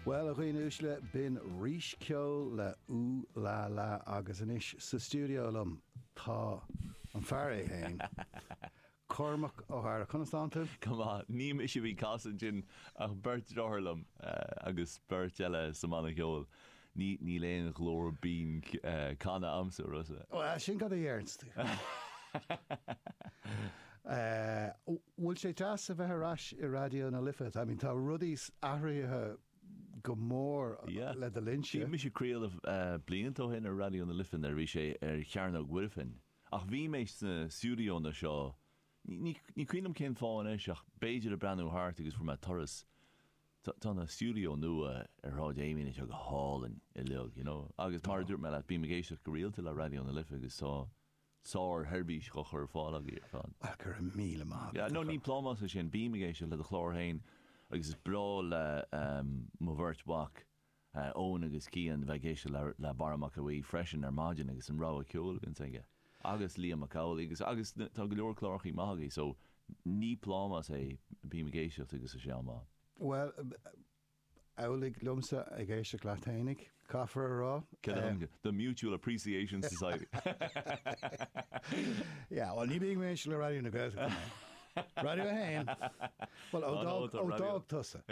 Bhuel, a dhaoine uaisle, b'in Rís Ceoil le Ooh La La agus anois sa stiúideo liom tá an fear é féin, Cormac Ó hEadhra. Conas tá tú? Go maith. Ní mise a bhí ag casadh ansin ach beirt deartháir liom agus beirt eile sa mbanna ceoil. Ní níl aon ghlór binn canta a'msa, a Rossa. Bhuel, sin cad a dhéarfas tú. bhfuil sé deas a bheith ar ais i Raidió na Life, I mean tá rudaí athraithe go mór Yeah, le do linnse. bhí mise craoladh blianta ó shin ar Raidió na Life nuair a bhí sé ar Chearnóg Mhuirfean ach bhí mé sna stiúideóanna seo, ní cuimhin liom cén fáth anois ach b'fhéidir ag breathnú thart agus fuair mé turas, tá na stiúideó nua ar Shráid Amiens anseo go hálainn uilig, you know agus mar a dúirt mé leat bím ag éisteacht go rialta le Raidió na Life agus tá sársheirbhís dhá cur ar fáil agaibh san. Ach go raibh míle maith agat, a. Ní plámás é sin, bím ag éisteacht le do chlár féin agus is breá le mo bheirt mhac, Eoin agus Cian, bheith ag éisteacht le Barra Mac Aoidh freisin ar maidin agus an rogha ceoil a bhíonns aige agus Liam Mac Amhlaigh agus agus tá go leor clárachaí maithe agaibh so ní plámás é bím ag éisteacht agus is é an Bhal. Bhuel, amhlaidh liomsa ag éisteacht leat fhéineach, caithfear a rá. Cad a thug tú? The Mutual Appreciation Society! Yeah, bhuel ní bhíonn mé le Raidió na Gaeltachta mé. Raidió 1? Bhuel ó d'fhág tusa.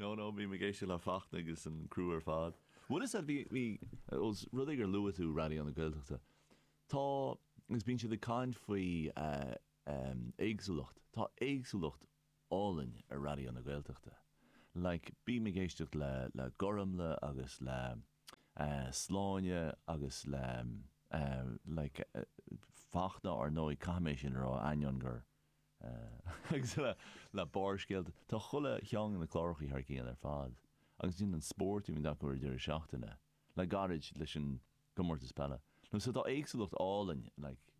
No no, bím ag éisteacht le Fachtna agus an criú ar fad. Bhuel is ea, bhí, os rud é gur luaigh tú Raidió na Gaeltachta, tá, agus bíonn siad ag caint faoi éagsúlacht, tá éagsúlacht, álainn ar Raidió na Gaeltachta. Like bím ag éisteacht le le Gormlaith agus le eh Máirín agus le eh like Fachtna ar ndóigh caithfidh mé sin a rá ainneoin gur eh agus le le Barrscéalta tá chuile cheann de na clárachaí thar cionn ar fad agus an spórt a bhíonn acu ar an deireadh seachtaine. le gairid leis an gcomórtas peile nó so tá éagsúlacht álainn like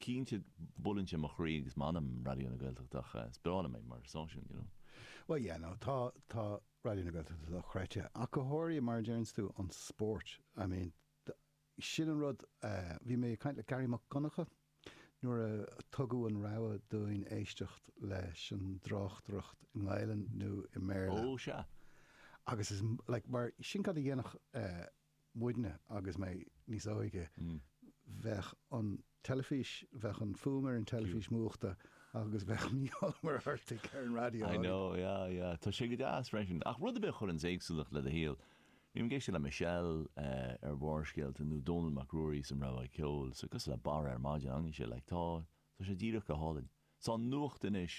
cinnte buaileann sé mo chroí agus m'anam Raidió na Gaeltachta ach eh is breá liom é mar stáisiún you know. Bhuel yeah no tá tá Raidió na Gaeltachta dochreidte ach go háirithe mar a deireanns tú an spórt I mean sin an rud eh bhí mé ag caint le Gearóid Mac Donncha Nuair a tugadh an rogha dúinn éisteacht leis an dtráchtaireacht i nGaelainn nó i mBéarla. Oh, sea. Agus is, like, mar, sin cad a dhéanadh eh muidne agus mé níos óige, bheadh an teilifís, bheadh an fuaim ar an teilifís múchta agus bheadh Mícheál Ó Muircheartaigh ar an raidió. I know, yeah, yeah. Tá sé go deas freisin. Ach rud ar bith a chuireanns éagsúlacht le do shaol, Bím ag éisteacht le Michelle ar Bharrscéalta nó Dónal Mac Ruairí sa Rogha Ceoil, so cosúil le Barra ar maidin, an ea Sile? Tá, tá sé díreach go hálainn. Tá an nuacht anois,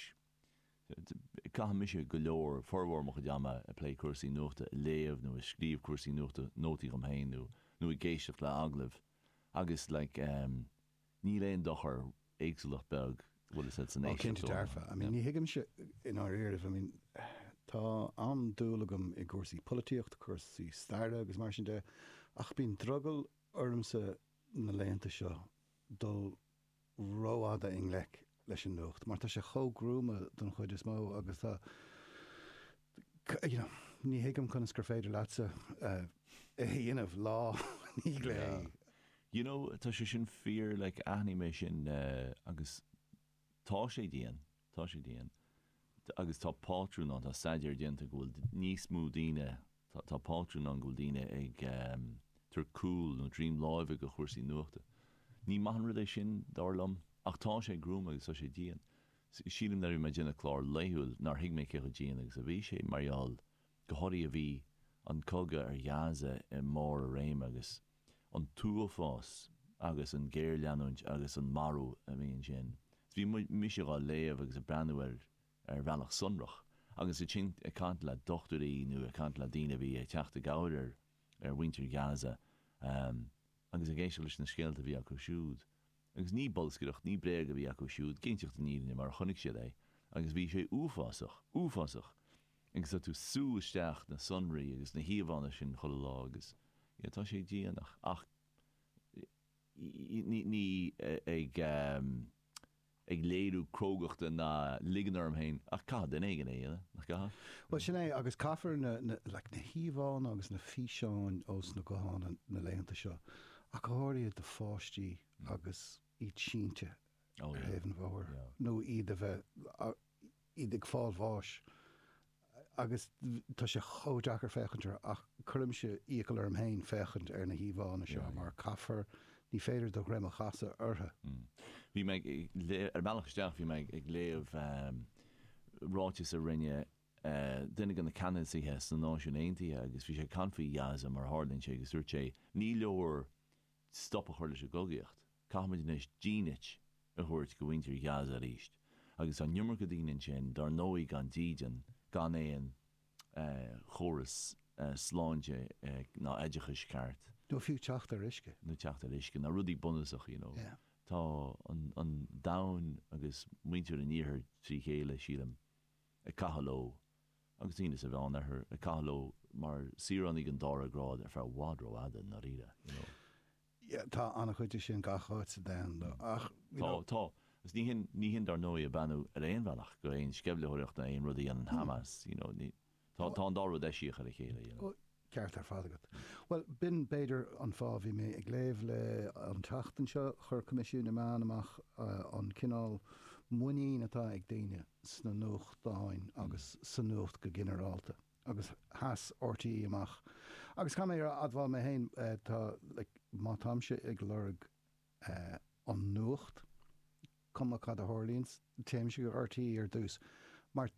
caithimse go leor, formhór mo chuid ama ag plé cúrsaí nuachta, ag léamh nó ag scríobh cúrsaí nuachta, nótaí dhom féin nó, nó ag éisteacht le hagallaimh agus like, Níl aon dochar, éagsúlacht beag, oh cinnte dearfa, I mean ní thuigimse i ndáiríribh, I mean tá an-dúil agam i gcúrsaí polaitíochta, cúrsaí staire agus mar sin de ach bíonn drogall ormsa na laethanta seo dul rófhada i ngleic leis an nuacht mar tá sé chomh gruama don chuid is mó agus tá you know ní thuigim conas gur féidir leatsa é a dhéanamh lá ní yeah you know tá sé sin fíor like aithním é sin é agus tá sé dian tá sé dian. agus tá pátrún ann, tá staidéar déanta go bhfuil níos mó daoine, tá pátrún ann go bhfuil daoine ag tabhairt cúl nó droim láimhe dho chúrsaí nuachta. Ní maith an rud é sin, dar liom, ach tá sé gruama agus tá sé dian. Sílim nuair a bhí mé ag déanamh clár laethúil nár thuig mé cé chomh dian agus a bhí sé mar gheall go háirithe bhí an cogadh ar Ghaza i mbarr a réime agus an t-uafás agus an géarleanúint agus an marú a bhí ansin. Is bhí mise dhá léamh agus a' breathnú air ar bhealach sonrach agus ansin a' caint le dochtúirí nó a' caint le daoine a bhí a' teacht i gcabhair ar, ar mhuintir Gaza agus ag éisteacht leis na scéalta a bhí acu siúd. Agus ní bolscaireacht, ní bréag a bhí acu siúd, ag inseacht na fírinne mar a chonaic siad é, agus bhí sé uafásach, uafásach! Agus tá tú sú isteach na sonraí agus na híomhánna sin chuile lá agus yeah tá sé dian ach ní, ní ag, ag léiriú crógachta ná ligean orm féin ach caithfidh duine éigin é dhéanamh, nach gcaithfidh? Bhuel sin é agus caithfear na, na, like, na híomhánna agus na físeáin ar na gutháin na laethanta seo ach go háirithe do pháistí agus iad sínte ar thaobh an bhóthair nó iad a bheith, iad ag fáil bháis agus tá sé chomh deacair féachaint orthu ach cuirimse iachall orm féin féachaint ar na híomhánna seo mar caithfear, ní féidir do dhroim a chasadh orthu. Bhí mé ag, ar an mbealach isteach bhí mé ag léamh ráiteas a rinne, duine de na ceannasaithe sna Náisiúin Aontaithe agus bhí sé ag caint faoi Ghaza mar a tharlaíonn sé agus dúirt sé ní leor stop a chur leis an gcogaíocht, caithfimid anois dínit a thabhairt dho mhuintir Ghaza arís agus tá an iomarca daoine ansin dár ndóigh gan dídean, gan aon chóras sláinte ná oideachais ceart. nó fiú teacht ar uisce. nó teacht ar uisce, na rudaí bunúsacha you know. Tá an domhan agus muintir an iarthair trí chéile sílim. ag caitheamh leo, agus daoine sa Mheán Oirthear, ag caitheamh leo mar saoránaigh an dara grád ar feadh i bhfad rófhada, i ndáiríre, you know. Yeah, tá an-chuid de sin gach áit sa domhan, though, Mm. ach, you Tá, know. tá. Agus ní hin, ní hin, dar ndóigh, a beannú ar aon bhealach go aon sceimhlitheoireacht nó aon rud a dhéanann Hamas, you know, ní, tá, tá an dá rud eisiach ar a chéile, you know. Ceart ar fad agat. Bhuel, b'in, b'fhéidir, an fáth a bhí mé ag léamh le an tseachtain seo. Chuir Coimisiún na Meán amach an cineál muinín atá ag daoine sna nuachtáin agus sa nuacht go ginearálta agus sheas RTÉ amach agus caithfidh mé a admháil mé féin tá, má táimse ag lorg an nuacht cuma cad a tharlaíonn téimse go RTÉ ar dtús mar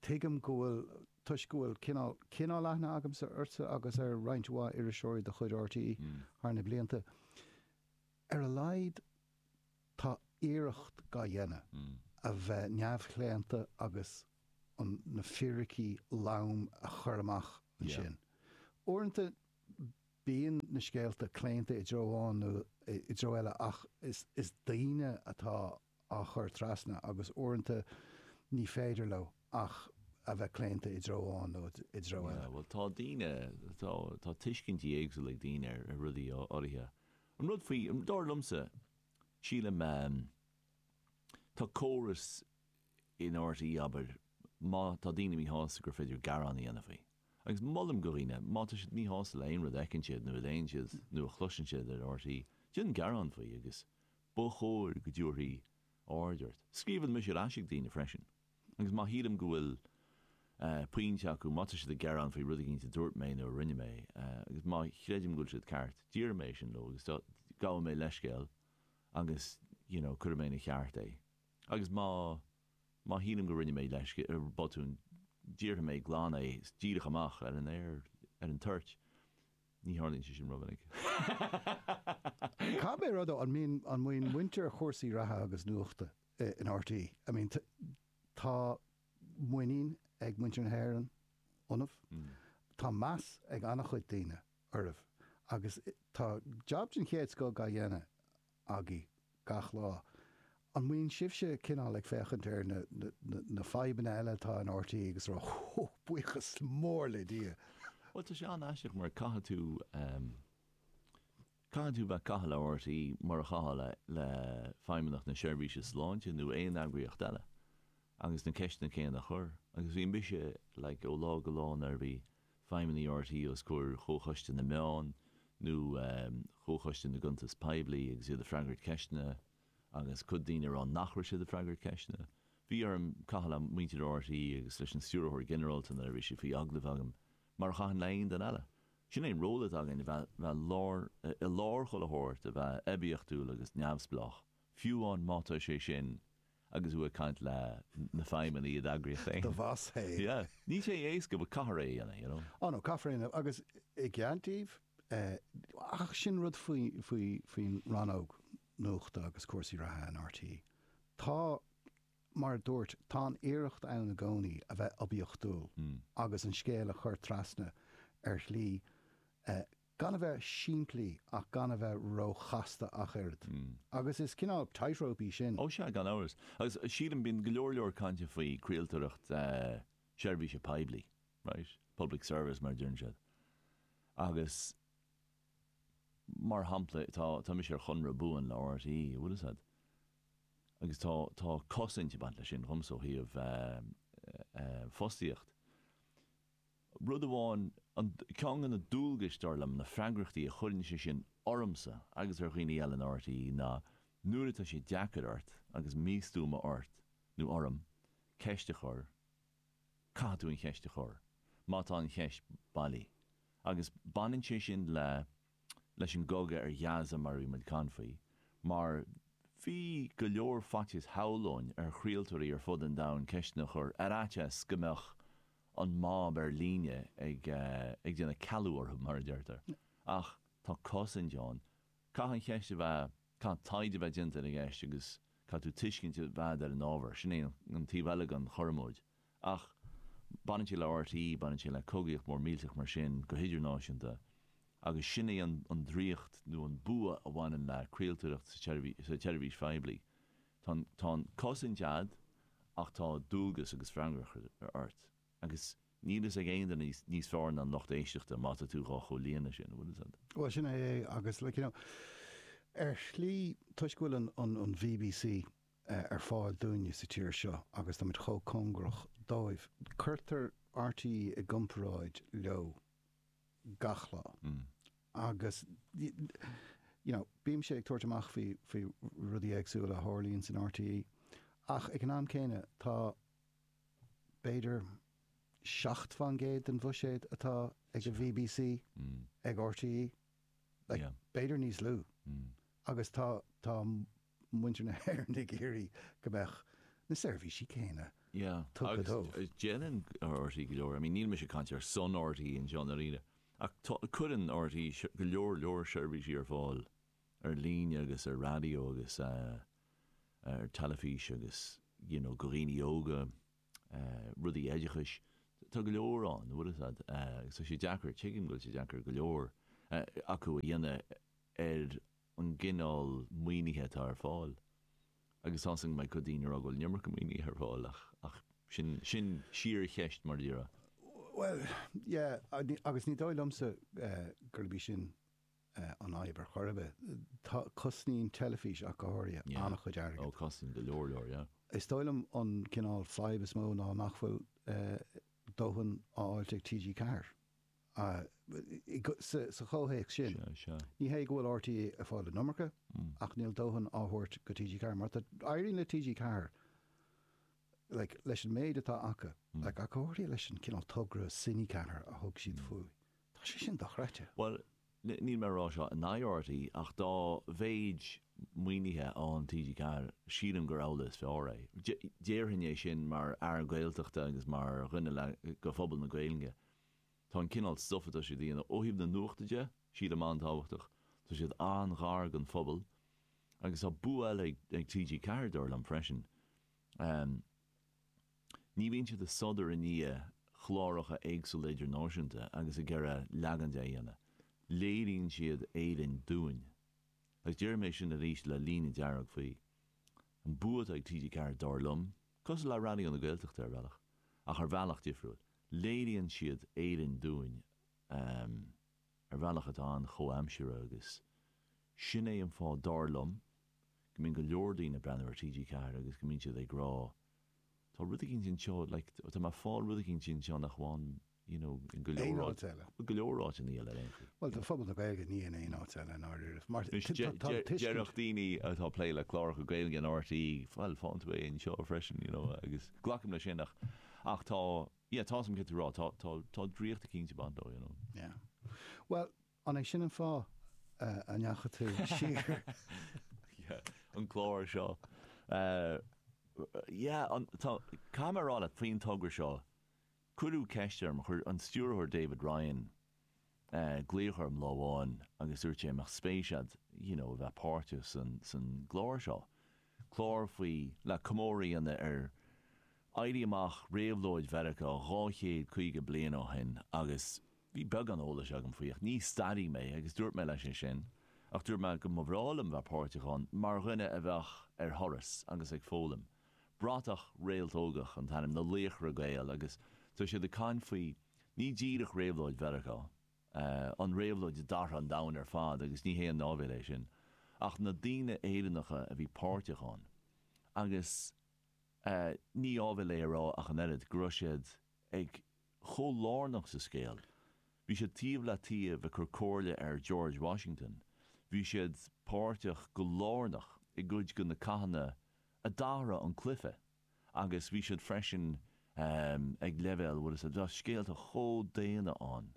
Tuigim go bhfuil, toisc go bhfuil cineál, cineál aithne agamsa ortsa agus ar roinnt mhaith iriseoirí de chuid RTÉ thar na blianta. Ar a laghad tá iarracht dá dhéanamh a bheith neamhchlaonta agus an, na fíricí loma a chur amach ansin. Uaireanta bíonn na scéalta claonta i dtreo amháin nó i dtreo eile ach is, is daoine atá á chur trasna agus uaireanta ní féidir leo ach a bheith claonta i dtreo amháin nó i dtreo eile. Bhuel tá daoine, tá, tá tuiscintí éagsúla ag daoine ar rudaí áirithe. An rud faoi, dar liomsa, sílim, tá córas in RTÉ, abair, má tá daoine míshásta gur féidir gearán a dhéanamh faoi. Agus molaim do dhaoine, má tá siad míshásta le aon rud a fheiceann siad nó a léann siad nó a chloiseann siad ar RTÉ, déan gearán faoi agus Ba chóir go dtabharfaí aird ort. Scríobhaim mise ar ais ag daoine freisin agus má shílim go bhfuil pointe acu, má tá siad ag gearán faoi rud éigin a dúirt mé nó a rinne mé agus má chreidim go bhfuil siad ceart, déarfaidh mé é sin leo agus gabhaidh mé leithscéal agus you know cuirfidh mé ina cheart é agus má má shílim go ndearna mé botún, déarfaidh mé glan é díreach amach ar an aer ar an toirt. Ní tharlaíonn sé sin ró-mhinic. Cá mhéad rud ó, an mbíonn, an mbíonn muintir chúrsaí reatha agus nuachta in RTÉ, I mean tá muinín ag muintir na hÉireann ionaibh, tá meas ag an-chuid daoine oraibh agus tá jab den chéad scoth á dhéanamh. agaibh gach lá. An mbíonn sibhse cineál ag féachaint ar na, na, na, na fadhbanna eile atá in RTÉ agus ag rá Hú, buíochas mór le Dia! Bhuel, tá sé an-aisteach mar caithfidh tú, em, caithfidh tú bheith ag caitheamh le RTÉ mar a chaithfeá le, le Feidhmeannacht na Seirbhíse Sláinte nó aon eagraíocht eile agus na ceisteanna céanna a chur agus bhí mise, like, ó lá go lá nuair a bhí, feidhmeannaigh RTÉ os comhair Chomhchoiste na Meán nó Chomhchoiste na gCuntas Poiblí agus iad ag freagairt ceisteanna agus cuid daoine ag rá nach raibh siad ag freagairt ceisteanna. Bhí orm caitheamh le muintir RTÉ agus leis an Stiúrthóir Ginearálta nuair a bhí siad faoi agallamh agam, mar a chaithfinn le haon duine eile. Sin é an ról atá againn, a bheith i lár an chultúir, a bheith oibiachtúil agus neamhspleách. Fiú amháin má tá sé sin agus tú ag caint le na feidhmeannaigh i d'eagraíocht féin. Do bhoss féin. Yeah. Níl sé éasca but caithfear é a dhéanamh, you know. Oh no, caithfear é a dhéanamh agus i gceart, ach sin rud faoin rannóg nuachta agus cúrsaí reatha in rte. Tá, mar a dúirt, tá an iarracht ann i gcónaí a bheith oibiachtúil agus an scéal a chur trasna ar shlí Gan a bheith simplí ach gan a bheith ró-chasta ach oiread. Agus is cineál tightrope í sin. Ó sea, gan amhras. Agus sílim, bíonn go leor leor cainte faoi chraoltóireacht seirbhíse poiblí, right? Public service mar a deireann siad. Agus mar shampla tá, tá mise ar chonradh buan le RTÉ, an bhfuil 'fhios a'd. Agus tá, tá cosaint ag baint leis sin dhomsa ó thaobh fostaíocht. Rud amháin, an, ceann de na dualgais, dar liom, na freagrachtaí a chuireann sé sin ormsa agus ar dhaoine eile in RTÉ ná nuair atá sé deacair ort agus míshuaimhneas ort nó orm ceist a chur, caithfidh tú an cheist a chur má tá an cheist bailí agus baineann sé sin le leis an gcogadh ar Gaza mar a bhí muid ag caint faoi mar bhí go leor faitíos shamhlóinn ar chraoltóirí ar fud an domhain ceisteanna a chur ar fhaitíos go mbeadh an mob ar líne ag ag déanamh cealú orthu mar a deirtear ach tá cosaint ann caithfidh an cheist a bheith caithfidh taighde a bheith déanta ar an gceist agus caithfidh tú tuiscint a bheith ar an ábhar sin é an taobh eile den chothromóid Ach baineann sé le rte, baineann sé le cogaíocht mór millteach mar sin go hidirnáisiúnta agus sin é an draíocht nó an bua a bhaineann le craoltóireacht seirbhíse poiblí. Tá an chosaint a'd ach tá dualgas agus freagracht ort agus níl fhios ag aon duine níos fearr ná an lucht éisteachta má tá tú dhá chomhlíonadh sin, an bhfuil fhios a'd? Bhuel sin é é agus like you know ar shlí toisc go bhfuil an an an bbc ar fáil dúinne sa tír seo agus táimid chomh cóngarach dóibh. Cuirtear RTÉ i gcomparáid leo gach lá agus you know bímse ag tabhairt amach faoi faoi rudaí éagsúla a tharlaíonn san RTÉ ach ag an am céanna tá b'fhéidir seacht fán gcéad den bhuiséad atá ag an bbc ag RTÉ like b'fhéidir níos lú agus tá tá muintir na hÉireann ag iarraidh go mbeadh na seirbhísí céanna tugtha dóibh. Agus déanann RTÉ go leor, I mean níl mise ag caint ar son RTÉ anseo ná aon duine, ach tá, cuireann RTÉ go leor leor seirbhísí ar fáil ar líne agus ar raidió agus ar teilifís agus you know go dhaoine óga, rudaí oideachais, tá go leor ann, bhfuil a fhios agat agus tá sé deacair, tuigim go bhfuil sé deacair go leor acu é a dhéanamh ar. an gcineál maoinithe atá ar fáil agus tá a fhios agam go mbeidh corrdhuine ag rá go bhfuil an iomarca maoinithe ar fáil ach sin sin síorcheist mar a déarfá. Bhuel yeah agus ní dóigh liomsa gurb í sin an fhadhb ar chor ar bith. Tá cosnaíonn teilifís ach go háirid an-chuid airgid. Yeah oh cosnaíonn go leor leor yeah. Is dóigh liom an cineál fadhb is mó ná nach bhfuil dóthain á fháilt ag TG4. Sa chomhthéacs sin, ní hé go bhfuil RTÉ ag fáil an iomarca, ach níl dóthain á thabhairt do TG4. Mar tá, éiríonn le TG4, like, leis an méid atá acu, like, ach go háirithe leis an cineál togra Cine4 a thug siad faoi, tá sé sin dochreidte. Bhuel, níl mé ag rá seo in aghaidh RTÉ, ach dá mhéid maoinithe a fhaigheann TG4, sílim gur amhlaidh is fearr é. Déarfainn é sin mar fhear Gaeltachta agus mar dhuine le, de phobal na Gaeilge. Tá an cineál stuff atá siad a dhéanamh ó thaobh na nuachta de, sílim an-tábhachtach. Tá siad an-ghar don phobal. Agus tá bua eile ag TG4 dar liom freisin. Ní bhíonn siad ag sodar i ndiaidh cláracha éagsúla idirnáisiúnta agus ag iarraidh leagan dó a dhéanamh. Léiríonn siad Éirinn dúinn. Agus déarfaidh mé sin arís le líne dearg faoi. An bua atá ag TG4 dar liom. Cosúil le Raidió na Gaeltachta ar bhealach, ach ar bhealach difriúil. Léiríonn siad Éirinn dúinn ar bhealach atá an-chomhaimseartha agus sin é an fáth, dar liom, go mbíonn go leor daoine ag breathnú ar TG4 agus go mbíonn siad ag rá tá rud eicínt anseo, like tá mé ag fáil rud eicínt anseo nach bhfaighim you know, i ngo leor áit, i ngo leor áiteanna eile ar aon chaoi. Bhuel, do phobal na Gaeilge ní in aon áit eile i ndáiríre. Mar, tá tuiscint. Déarfadh daoine atá ag plé le cláracha Gaeilge in RTÉ, bhuel, faigheann tú é anseo freisin, you know, agus glacaim leis sin ach, ach tá, yeah, tá, tá a fhios agam céard atá tú a rá, tá, tá, tá draíocht eicínt ag baint leo, you know. Yeah. Bhuel, an é sin an fáth a ndeachaigh tú siar? Yeah, an clár seo. Eh, yeah, an, tá, caithfidh mé a rá leat, faoin togra seo, Cuireadh ceist orm, chuir an stiúrthóir David Ryan glaoch orm lá amháin agus dúirt sé an mbeadh spéis agat you know a bheith páirteach sa gclár seo, clár faoi, le comóradh a dhéanamh ar Éirí Amach, Réabhlóid Mheiriceá dhá chéad caoga bliain ó shin agus bhí beagán eolais agam faoi ach ní staraí mé agus dúirt mé leis é sin ach dúirt mé go mba bhreá liom bheith páirteach ann mar dhuine a bheadh ar thuras agus ag foghlaim. Bratach Réaltógach an t-ainm, na Laochra Gael agus tá siad ag caint faoi ní díreach réabhlóid Mheiriceá, an réabhlóid a d'athraigh an domhan ar fad agus ní haon áibhéil é sin, ach na daoine Éireannacha a bhí páirteach ann agus ní áibhéil é a rá ach an oiread go raibh siad ag chomh lárnach sa scéal. Bhí siad taobh le taobh ag cur comhairle ar George Washington, bhí siad páirteach go lárnach i gcuid de na cathanna a d'athraigh an cluiche agus bhí siad freisin ag leibhéal bhuel is tá scéalta chomh daonna ann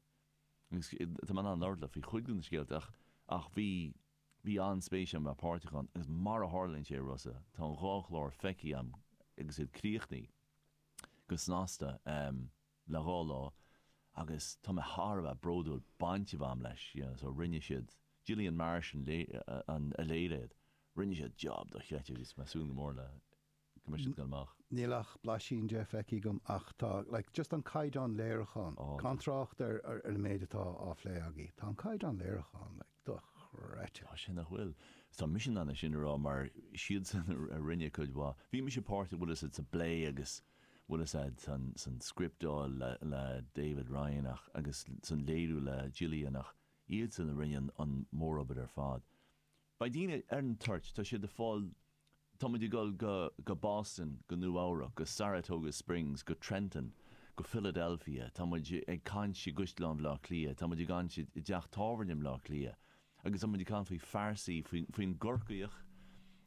agus tá mé in ann labhairt leat faoi chuid de na scéalta ach bhí bhí an-spéis agam a bheith páirteach ann agus mar a tharlaíonn sé Rosa tá an dhá chlár feicthe agam agus iad críochnaithe go snasta. le dhá lá agus tá mé thar a bheith bródúil baint a bheith a'm leis you know so rinne siad Gillian Marsh a léirigh é rinne siad job dochreidte agus mé ag súil go mór le go mbeidh siad ag dul amach. Níl ach blaisín de feicthe agam ach tá like just an caighdeán léiriúcháin oh gan trácht ar ar an méid atá á phlé agaibh tá an caighdeán léiriúcháin like dochreidte. Tá sé nach bhfuil. Is tá mise in ann é sin a rá mar is iadsan a a rinne cuid mhaith bhí mise páirteach bhfuil fhios a'd sa bplé agus bhfuil fhios a'd san scripteáil le David Ryan ach agus san léiriú le Gillian ach iadsan a rinne an mórobair ar fad. Beidh daoine ar an toirt, tá siad a' fáil, tá muid a' gul go, go Boston, go Nua Eabhrac, go Saratoga Springs, go Trenton, go Philadelphia, tá muid ag caint i gCaisleán Bhleá Cliath, tá muid ag caint i dteach tábhairne i mBleá Cliath, Agus muid ag caint faoi phearsaí, faoin gCorcaíoch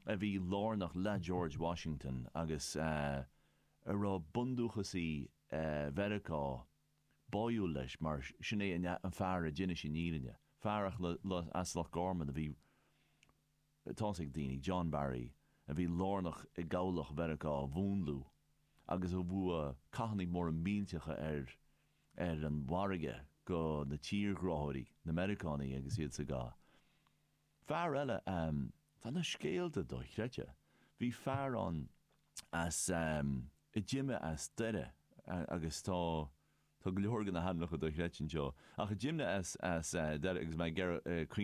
a bhí lárnach le George Washington agus a raibh bundúchasaí Mheiriceá báúil leis mar sin é an fear a d'inis an fhírinne, fear as Loch Gorman a bhí, tá's ag daoine, John Barry, a bhí lárnach i gCabhlach Mheiriceá a mhúnlú agus a bhuaigh cathannaí móra millteacha ar. ar an bhfarraige do na tírghráthóirí, na Meiriceánaigh agus iad sa gcath. Fear eile ehm, tá na scéalta dochreidte, bhí fear ann as ehm, a d'imigh as Doire agus tá, tá go leor de na hainmneacha dochreidte anseo, ach a d'imigh as, as eh, Doire agus mé ag, eh,